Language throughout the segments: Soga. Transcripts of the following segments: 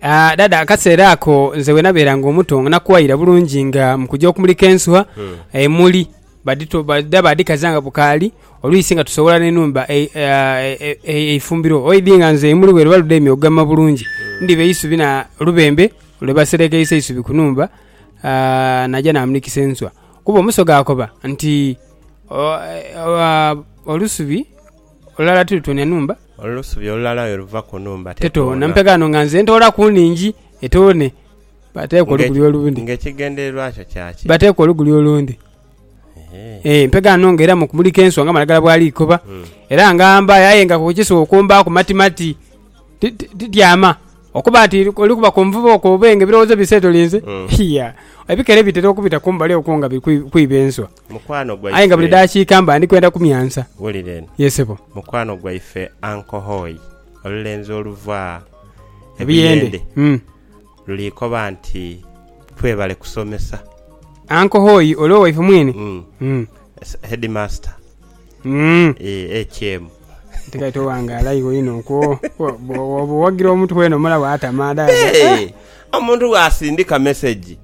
Ah, dada akaseera ako nze bwe nabeeranga omuto nga nakuwaira bulungi nga mu kujja okumulika ensuwa emuli badito- badha badhikaza nga bukaali olwisi nga tusowoola n'enhumba ei- ah, e- e- eifumbiro oidhi nga nze emuli bwe liba lidhaime okugema bulungi ndhiba eisubi na lubembe lwe baserekeisa eisubi ku nhumba ah, naja namulikisa ensuwa. Kuba omusoga akoba nti o- e- ah, olusubi... Olulala tilutoonia nhumba. Olusubi olulala aye luva ku nhumba tetoona. Mpe ghano nga nze ntoola ku nhingi etoone, baateeku oluguli olundi. Nga ekigendererwa kyo kya ki? Baateeku oluguli olundi. Ee, mpe ghano nga era mu kumulika ensuwa nga amalagala bwali ikoba. Era nga mbayo aye nga ku kisuwa okumbaaku matimati. Ti, ti, tityama. Okuba nti oli kuba ku nvuba okwo oba nga ebirowoozo biseetolinze, hia, ebikere bitera okubita kumbali okwo nga biri kwiba enswa. Mukwano gwaife. Aye nga buli dakiika mba ndi kwenda kumyansa. Wulira eno. Ye sebo. Mukwano gwaife Uncle Hoi, olulenzi oluva e Buyende, luli koba nti, Twebale kusomesa. Uncle Hoi oli owaife mwine? Umm. Headmaster. Umm. Eeh, HM. Ate kati owangaala iwe inho okwo. Bwoba owagira omutu weene omulaba atama. Eeh, omuntu bwasindika message.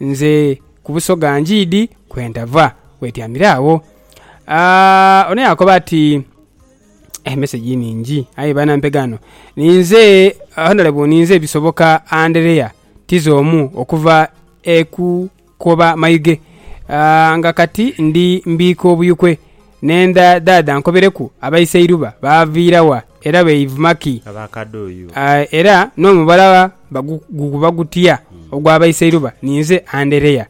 Nze ku Busoga Ngiidi kwe ndava. Weetyamire agho. Ono yaakoba ati, Emeseji nhingi aye banampega ghano. Ninze Honourable ninze Bisoboka Anderea Tizo omu okuva e Kukoba Mayuge nga kati ndi mbiika obuyukwe. Nhenda dhaadha ankobereku abaiseiruba baaviira wa, era beivuma ki? Abakadoyo. Era n'omubala guguba gutya ogw'abaiseiruba? Ninze Anderea.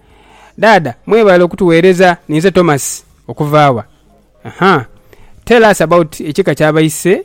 Dhaadha, mwebale okutugheereza. Ninze Tomasi. Okuva wa? Aha. Tell us about ekika ky'abaise.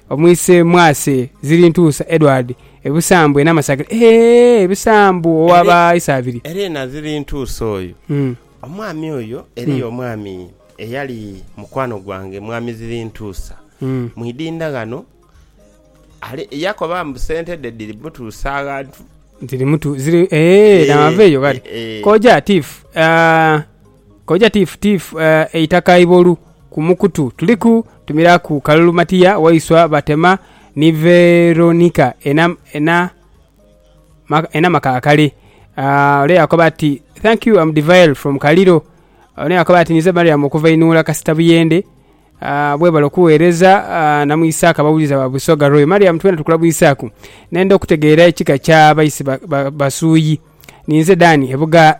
Omwise Mwase ziri ntuusa Edward e Busambwe Namasagire eeh Busambwe owa ba Isaabiri. Erena ziri ntuusa oyo omwami oyo eriyo omwami eyali mukwano gwange mwami ziri ntuusa mu idinda ghano ali yakoba mbu sente dhe dhiri mutuusa aghantu. Dhiri mutuusa eeh namaveyo kati koja tiff aah. Koja tiifu tiifu eitaka ibolu ku mukutu tuliku tumiraku kalulu Matiya waiswa batema ni Veronika ena ena maka akale ole yakoba ati Thank you am Divael from Kaliro Ono yakoba ati nize Mariam okuva inuula kasita buyende Webale okuwereza Namwisaaka abawulize aba Busoga Royal Mariam twena tukulabwisaku nenda okutegeera ekika kya baisi ba Basuuyi Ninze Dan ebuga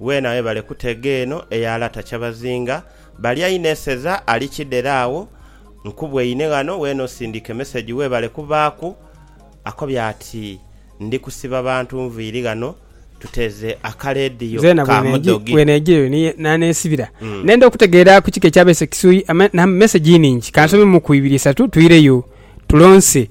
Weena webale kutega eno eya Lata Kyabazinga balya inho eseza ali kidhere agho nkubweine ghano weena osindike message webale kubaaku akobya ati ndi kusiba bantu nviiri ghano tuteeze aka leediyo Nzeena ka mudhogi. bweneeja eyo ni n'aneesibira. Nenda okutegeera ku kika ekyabeese Kisui. Ama, na, message iningi. Kansome muku ibiri isatu, twireyo, tulonse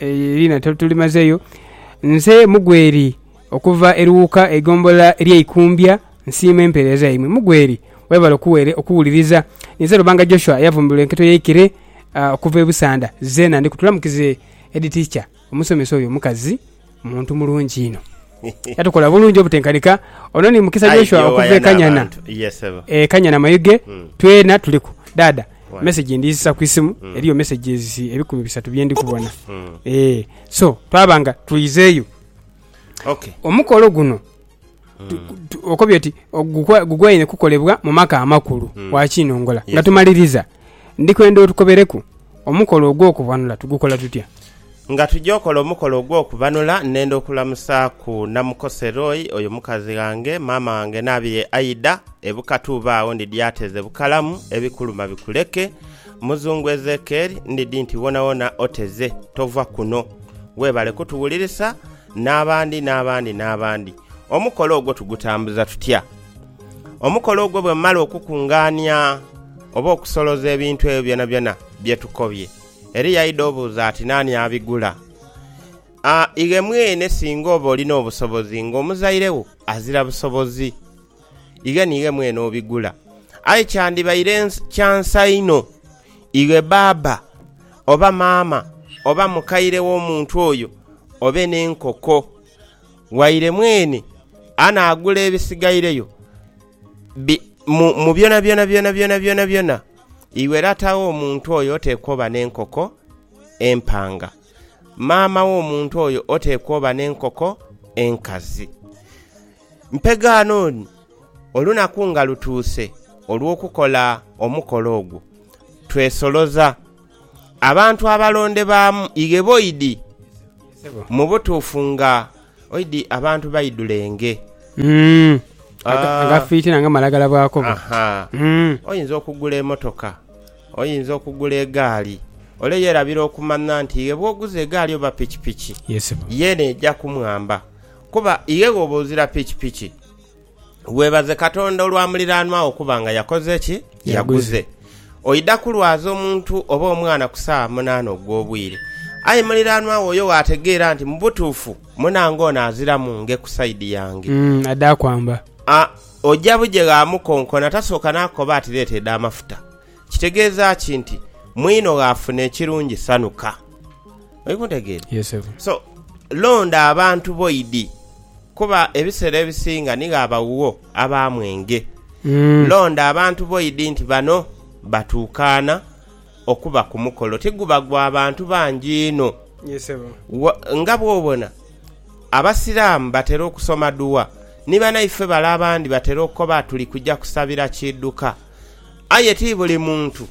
Liina tulimazeyo. Nze Mugweri okuva Eruwuka eigombolola erye Ikumbya nsiima empeereza yaimwe. Mugweri webale okuwere okuwuliriza. Ninze Lubanga Joshua eyavumbirwa enketo y'eikere okuva e Busanda. Zeena ndiku tulamukize Head Teacher omusomesa oyo omukazi muntu mulungi inho. Yatukola bulungi obutenkanika. Ono ni Mukisa Joshua okuva e Kanyana e Kanyana Mayuge. Twena tuliku. Dhaadha. Message ndizisa ku isimu. Eriyo messages ebikumi bisatu bye ndi kubona. Eeh. So, twaba nga twiizeeyo. Omukolo guno okobye oti gugwaine kukolebwa mu maka amakulu wa Kinongola. Nga tumaliriza, ndi kwenda otukobereku omukolo ogw'okubonula tugukola tutya. Nga tuja okola omukolo ogw'okubanula, nenda okulamusaaku Namukoseroi, oyo mukazi ghange, maama wange n'abi ye Aida, e Bukatu uba agho ndidhi ateze bukalamu, ebikuluma bikuleke. Muzungu Ezekieri, ndidhi nti wonawona oteze, tova kuno. Webale kutuwulirisa, n'abandi, n'abandi, n'abandi. Omukolo ogwo tugutambuza tutya? Omukolo ogwo bwemala okukungaania oba okusoloza ebintu ebyo byonabyona bye tukobye, Eri yaidha obuuza ati, Naani abigula? A Ighe mwene singa oba olina obusobozi ng'omuzaire wo azira busobozi, ighe niighe mwene obigula. Aye kyandibaire kya nsa inho ighe baaba oba maama oba mukaire w'omuntu oyo obe n'enkoko waire mwene anaagula ebisigaireyo mu byonabyona byonabyona byonabyona. Iwe lata w'omuntu oyo oteekwa oba n'enkoko empanga, maama w'omuntu oyo oteekwa oba n'enkoko enkazi. Mpegaano ni, olunaku nga lutuuse olw'okukola omukolo ogwo, twesoloza abantu abalondebaamu igheboidhi mu butuufu nga Oidi abantu baidhulenge. Nga fitina nga malagala bw'akoba. Oyinza okugula emotoka, oyinza okugula egaali, ole yeerabira okumanha nti iwe bw'oguza egaali oba pikipiki, yeene eja kumwamba kuba iwe bw'oba ozira pikipiki. Weebaze Katonda olwa muliraanwa wo kuba nga yakoze ki? Yaguze. Oidha kulwaza omuntu oba omwana ku saawa munaana ogw'obwire, aye muliraanwa wo oyo waategeera nti mu butuufu munange ono aziramu nge ku saidi yange, adha kwamba. A Oja buje ghaamukonkona tasooka n'akukoba ati leeta edh'amafuta. Kitegeeza ki nti mwino ghafuna ekirungi sanhuka? Oli kuntegeera? Yes sebo. So, londa abantu bo idi, kuba ebiseera ebisinga nigho abaghuwo aba mwenge. Londa abantu bo idi nti bano batuukaana okuba ku mukolo. Tiguba gwa bantu bangi inho. Yes sebo. Wa, nga bw'obona Abasiraamu batera okusoma dua, ni banaife bale abandi batera okoba tuli kuja kusabira kidhuka. Aye ti buli muntu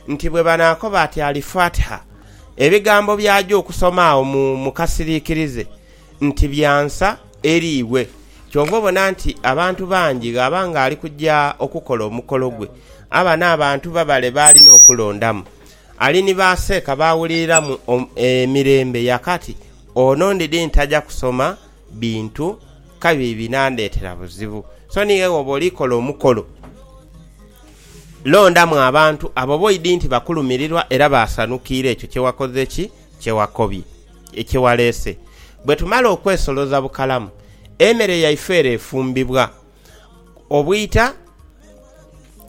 nti bwe banaakoba ati Al-Fatiha, ebigambo by'aja okusoma agho mu kasiriikirize nti bya nsa eri iwe. Kyova obona nti abantu bangi ghaba ng'ali kuja okukola omukolo gwe, aba n'abantu babale b'alina okulondamu. Ali ni ba seeka b'awuliriramu emirembe ya kati, ono ndidhi ntaja kusoma bintu kabi binandheetera buzibu. So ni ghe wooba oli kola omukolo, londamu abantu abo b'oidhi nti bakulumirirwa era baasanukiire ekyo kye wakoze ki? Kye wakobye, kye waleese. Bwe tumala okwesoloza bukalamu, emere yaife ere efumbibwa. Obwita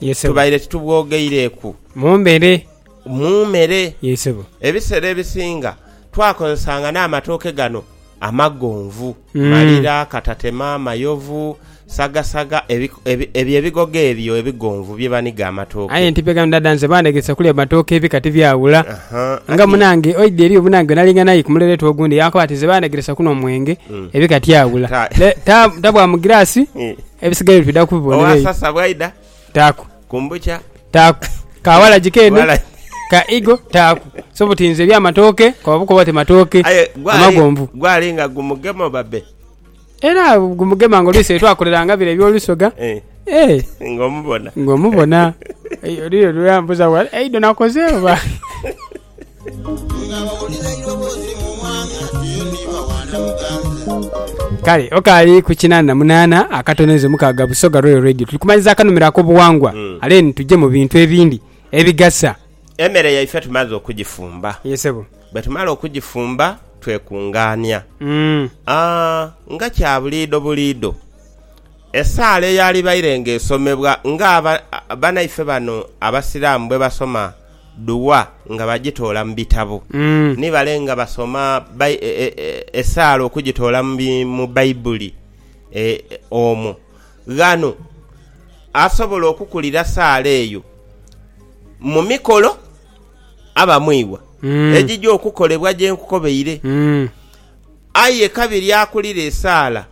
Yes, sebo. tubaire titubwogeireku Mumbere. mu mere. Yes, sebo. Ebisera ebisinga twakozesanga n'amatooke gano amagonvu, Mm. malira, katatema, mayovu, sagasaga, ebi- ebi- ebyo ebigogo ebyo ebigonvu bye baniga amatooke. Aye nti bega ndada nze bandegesa kulya matooke ebika tibyawula. Aha, nga ati- munange oidhi eriyo munange nalinga naye ku muleretu ogundi yankoba ati nze bandegeresa kuno omwenge Ebika tiaghula. Tabwamu girasi ebisigaire twidha kubibona eyo. Owasasa bwaidha? Taaku. Kumbukya? Taaku. Ka walagi keene? Ka igo? Taaku. So buti nze eby'amatooke koba bukoba oti matooke amagonvu. Gwali nga gumugema babe? Era gumugema nga olwisi etwakoleranga bire eby'olusoga. Eh. Eh. Nga omubona? Nga omubona. Eyo lire lweyambuza wali eido nakoze oba? Kale okaali ku kinaana na munaana akatono inze mukaaga Busoga Royal Radio. Tuli kumaliriza akanhumiro ak'obuwangwa ale ni tuje mu bintu ebindi ebigasa. Emere yaife tumaze okugifumba. Ye ssebo. Bwe tumala okugifumba twekungaania. Aa, nga kya buliido buliido, esaala eyaalibaire ng'esomebwa nga aba, banaife bano Abasiraamu bwe basoma. Dua nga bajitoola mu bitabo, ni bale nga basoma esaala okujitoola mu Baibuli omwo. Ghano asobola okukulira saala eyo mu mikolo aba mu iwa egija okukolebwa gye nkukobeire. Aye kabiri akulira esaala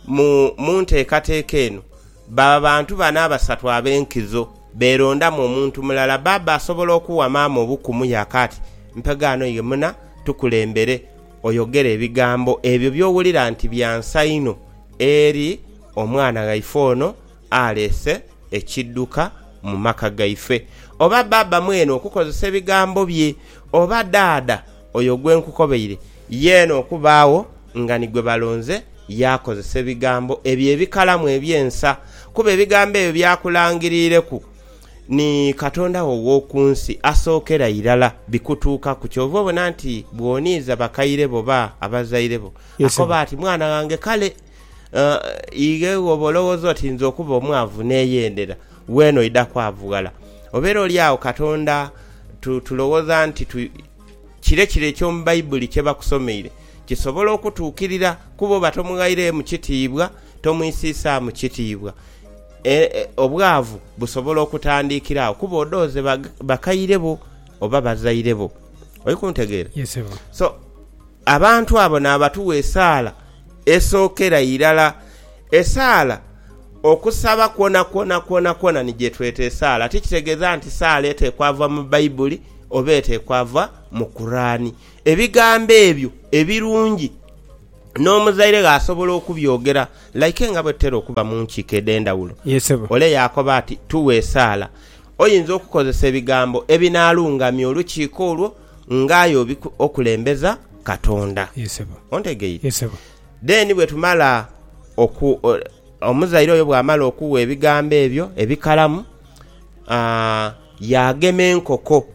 mu nteekateeka eno baba bantu bano abasatu ab'enkizo. beerondamu omuntu mulala. Bbaabba asobola okuwa maama obukumu yaakaati, Mpe ghano ye muna, tukulembere oyogere ebigambo ebyo by'owulira nti bya nsa inho eri omwana waife ono aleese ekidduka mu maka gaife. Oba bbaabba mwene okukozesa ebigambo bye, oba ddaadha Oyo gwe nkukobeire, yeena okubaagho nga ni gwe balonze, yaakozesa ebigambo ebyo ebikalamu eby'ensa, kuba ebigambo ebyo by'akulangiriireku ni Katonda wo ow'oku nsi asookera irala bikutuukaku. Kyova obona nti bw'oniiza bakaire bo oba abazaire bo, akoba ati, Mwana ghange, kale ighe bw'oba olowooza oti nze okuba omwavu neeyendera, weena oidha kwavughala. Obeera oli agho Katonda tulowooza nti Kire kire eky'omu Baibuli kye bakusomeire kisobola okutuukirira ku bo oba tomughaireemu kitiibwa, tomwisiisaamu kitiibwa. E, e, obwavu busobola okutandiikira agho kuba odhooze bakaire bo oba bazaire bo. Oli kuntegeera? Yes, ssebo. So, Abantu abo naabatuwa esaala esookera irala. Esaala, okusaba kwonakwona kwonakwona ni gye tweta esaala. Ti kitegeeza nti saala eteekwa va mu Baibuli oba eteekwa va mu Kuraani. Ebigambo ebyo ebirungi n'omuzaire ghe asobola okubyogera like nga bwe tutera okuba mu nkiiko edh'endhawulo. Ole yaakoba ati, Tuwe esaala. Oyinza okukozesa ebigambo ebinaalungamya olukiiko olwo. nga aye okulembeza Katonda. Ontegeire? Then bwetumala oku, omuzaire oyo bwamala okuwa ebigambo ebyo ebikalamu, yaagema enkoko.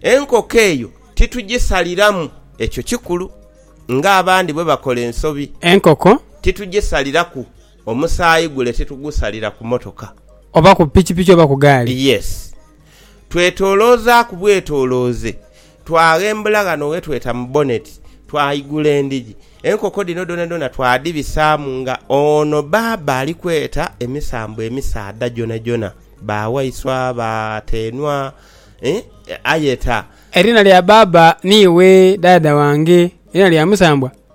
Enkoko eyo titugisaliramu, ekyo kikulu, nga abandi bwebakola ensobi. Enkoko titugisaliraku. Omusaayi gule titugusalira ku motoka. Oba ku pikipiki oba ku gaali. Yes. Twetoloozaaku bwetolooze, twaghembula ghano ghe tweta mu boneti, twaigula endhigi. Enkoko dhino dhonadhona twadhibisaamu nga ono bbaabba ali kweta emisambo emisaadha gyonhagyonha, ba waiswa, ba teenhwa, eeh, ayeta. Eriina lya bbaabba niiwe dhaadha wange, eriina lya musambwa?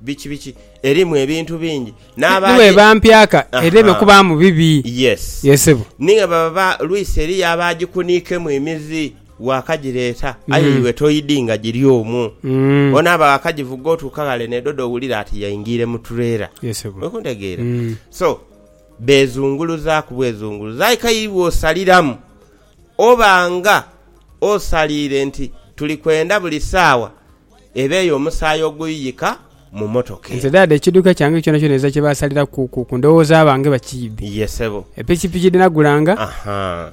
Biki biki? Erimu ebintu bingi. Ni bwe bampyaka edhebe kubaamu bibi. Yes. Ye sebo. Ni nga baba lwisi eriyo abaagikuniikemu emizi waakagireeta aye iwe toidinga giri omwo. Ono aba waakagivuga otuuka ghale n'edhoda owulira ati yaingiire mu tureela. Ye sebo. Oli kuntegeera? So, beezunguluzaaku bwezunguluzi. Aye k'aye iwe osaliramu oba nga osaliire nti tuli kwenda buli saawa. eba eyo omusaayi oguyuyika mu motoka eyo. Nze dada ekiduka kyange kyona kyona eza kyebasalira ku ku ku ndowoza bange bakiibe. Ye sebo. Epikipiki dhenagulanga. Ahaa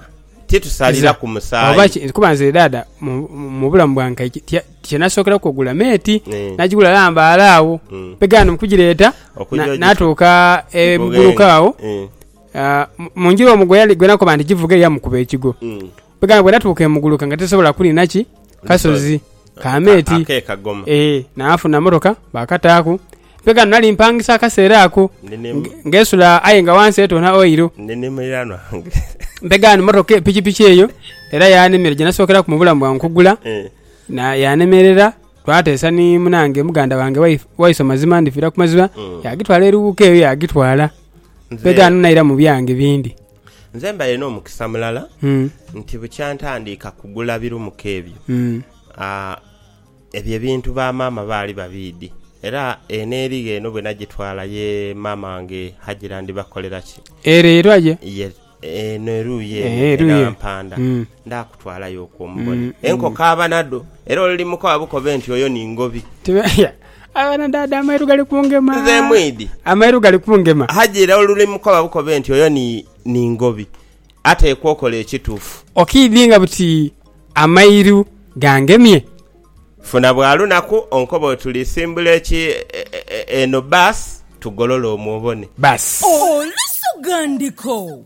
titusalira ku musaayi. Oba ki kuba nze dada mu mu bulamu bwange kye kye kyenasokeraku ogula mate nagigula lambaale agho mpegana mukugireeta natuuka e muguluka agho mu njira omu gwenakoba nti givuge yamukuba ekigo. Bwegamba bwenatuuka emuguluka nga tesobola kulina ki kasozi kameeti Ake kagoma. ee nafuna motoka bakataaku mpe ghano nali mpangisa akaseera ako Nini- nge- ngesula aye nga wansi etoona oiro Ndi ni muliraanwa wange. mpe ghano motoka e- pikipiki eyo era yanemera gyenasookeraku mu bulamu bwange okugula Eh, na yanemerera twateesa ni munange muganda wange Wai- waiso mazima ndifiira ku mazima Mm. yagitwala eruwuka eyo yagitwala mpe nze- ghano naira mu byange bindi Nze mbaire n'omukisa mulala nti bukya ntandiika kugula birumuka ebyo, ebyo ebintu ba maama baali babiidhi. Era eno erigho eno bwe nagitwala ye maama wange Hajira ndibakolera ki? Ere eraghe? Eno eruuyi ere e Nampanda. Ndaakutwalayo okwo mubone enkoko aba nadho, era olimukoba bukobe nti, Oyo ni Ngobi. Abana dada amairu gali kungema. Nze mwidhi. Amairu gali kungema. Haji, era olimukoba bukobe nti, Oyo ni Ngobi. Ateekwa okola ekituufu. Okiidhinga buti amairu gangemye? Funa bwa lunaku onkobe oti, Tulisimbula eki eno bbaasi tugolole omwo obone. Bbaasi. Olusugha ndiko.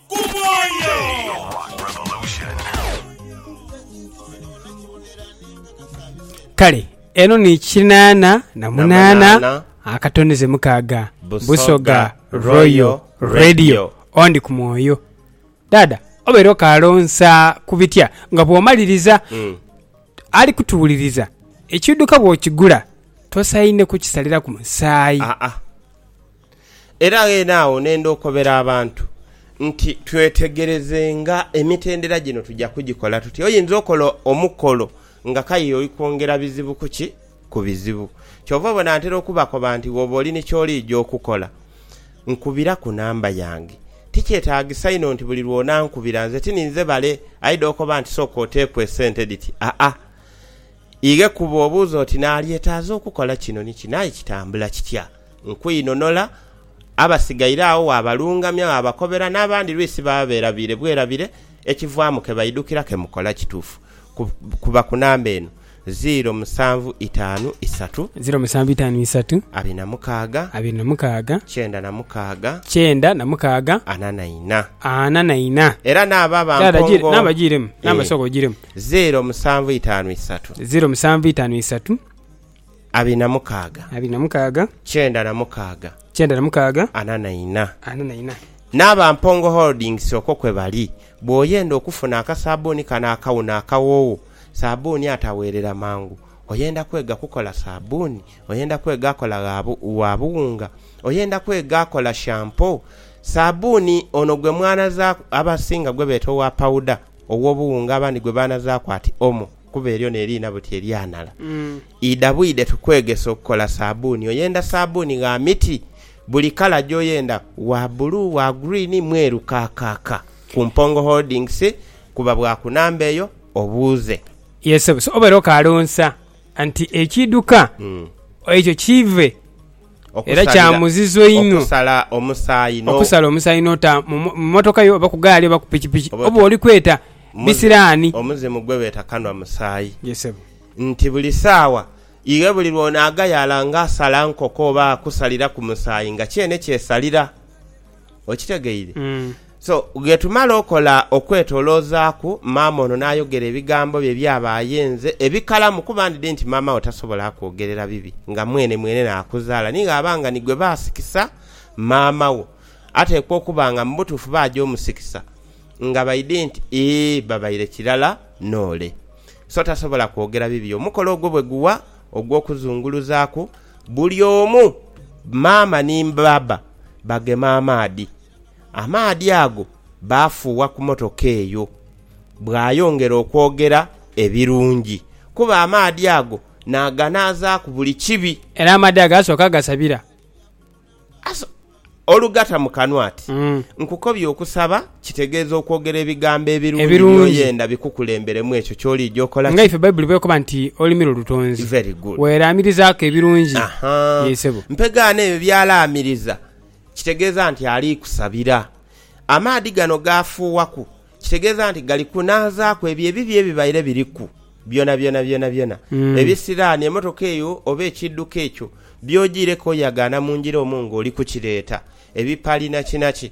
Ku mwoyo. Kale eno ni kinaana na munaana akatono ze mukaaga. Busoga Royal Radio ondi ku mwoyo. Dhaadha obeera okaalonsa ku bitya nga bw'omaliriza? Ali kutuwuliriza, ekiidhuka bw'okigula tosaine kukisaliraku musaayi. Era ghene agho nenda okobera abantu nti twetegerezenga emitendera gino tuja kugikola tutya. Oyinza okola omukolo nga k'aye oli kwongera bizibu ku ki? Ku bizibu. Kyova obona ntera okubakoba nti bwoba oli ni ky'oliija okukola, nkubira ku namba yange. Ti kyetaagisa inho nti buli lw'onankubira nze ti ninze bale aidha okoba nti sooka oteeku esente dhiti, aa. Ighe kuba obuuza oti, Naalyetaaza okukola kino ni kino, aye kitambula kitya? Nkwinhonola, abasigaire agho waabalungamya, waabakobera, n'abandi lwisi baba beerabiire bwerabiire, ekivaamu ke baidhukira ke mukola kituufu. Kuba ku namba eno, ziiro musanvu itaanu isatu. Ziiro musanvu itaanu isatu. Abiri na mukaaga. Abiri na mukaaga. Kyenda na mukaaga. Kyenda na mukaaga. Ana na ina. Ana na ina. Era n'abo abampongo. Namba giiremu. Namba sooka ogiiremu. Zeero musanvu itaanu isatu. Zeero musanvu itaanu isatu. Abiri na mukaaga. Abiri na mukaaga. Kyenda na mukaaga. Kyenda na mukaaga. Ana na ina. Ana na ina. N'aba Mpongo Holdings okwo kwe bali. Bw'oyenda okufuna akasaabuuni kano akawuno akawoowo, saabuuni ataweerera mangu, oyenda kwega kukola saabuuni, oyenda kwega akola gha wa buwunga, oyenda kwega akola shampoo, saabuuni ono gwe mwanazaaku abasinga gwe beeta owa pawuda, ow'obuwunga abandi gwe baanazaaku ati omo, kuba eryo neriina buti eryanhala. Idha bwidhe tukwegese okukola saabbuuni. Oyenda saabbuuni gha miti, buli kala gy'oyenda, wa bbulu, wa guriini, mweru kaakaaka. Ku Mpongo Holdings, kuba bwa ku namba eyo obuuze. Ye ssebo, so obeere okaalonsa nti ekiidhuka ekyo kiive. Era kya muzizo inho okusala omusaayi n'ota mu mmotoka yo oba ku gaali oba ku pikipiki oba oli kweta bisiraani. Omuzimu gwe beeta kanwa musaayi. Ye ssebo. Nti buli saawa iwe buli lw'onaaghayala ng'asala nkoko oba akusaliraku musaayi nga kyene kyesalira. Okitegeire? So, bwe tumala okola okwetoloozaaku, maama ono n'ayogera ebigambo bye by'aba ayenze ebikalamu, kuba ndidhi nti maama wo tasobola akwogerera bibi nga mwene mwene n'akuzaala. Ni ghaba nga ni gwe baasikisa maama wo, ateekwa okuba nga mu butuufu baaja omusikisa nga baidhi nti, Ee, babaire kirala n'ole. So, tasobola kwogera bibi. Omukolo ogwo bwe guwa ogw'okuzunguluzaaku, buli omu, maama ni bbaabba, bagema amaadhi. Amaadhi ago baafuuwa ku motoka eyo. Bwayongera okwogera ebirungi, kuba amaadhi ago naaganaazaaku buli kibi. Era amaadhi ago asooka gasabira. Olugata mu kanwa ati, Nkukobye okusaba. Kitegeeza okwogera ebigambo ebirungi by'oyenda bikukulemberemu ekyo ky'oliija okola ki? Nga ife Baibuli bw'ekoba nti olulimi lwo lutonzi, weeraamirizaaku ebirungi. Yee, ssebo. Mpegaano ebyo by'alaamiriza kitegeeza nti ali kusabira. Amaadhi gano g'afuuwaku kitegeeza nti gali kunaazaaku ebyo ebibi ebibaire biriku byonabyona. Byonabyona ebisiraani, emmotoka eyo oba ekiidhuka ekyo by'ojiireku oyagaana mu njira omwo ng'oli kukireeta, ebipali nakinaki,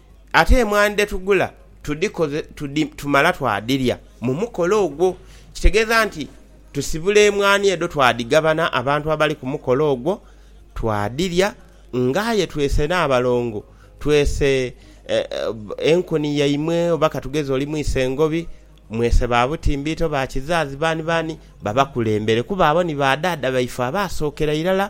Ate emwaani dhe tugula tudhikoze tudhi tumala twadhilya mu mukolo ogwo. Kitegeeza nti tusibula emwaani edho twadhigabana abantu abali ku mukolo ogwo, twadhilya. Nga aye twese n'abalongo, twese enkuni yaimwe oba ka tugeze oli mwise ngobi, mwese ba butimbiito, ba kizaazi, baani baani, babakulembere kuba abo ni ba dhaadha baife abaasookera irala.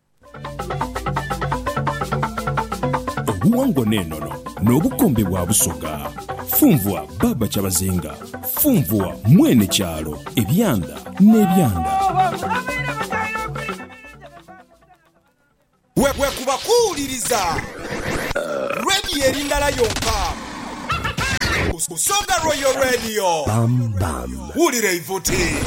Obuwangwa n'enono n'obukombe bwa Busoga. Funvua Baaba Kyabazinga, funvua Mwene kyalo, ebyanda n'ebyanda. Bwekuba kuwuliriza Radio eri ndala yonka, Busoga Royal Radio. Wulira eivuti.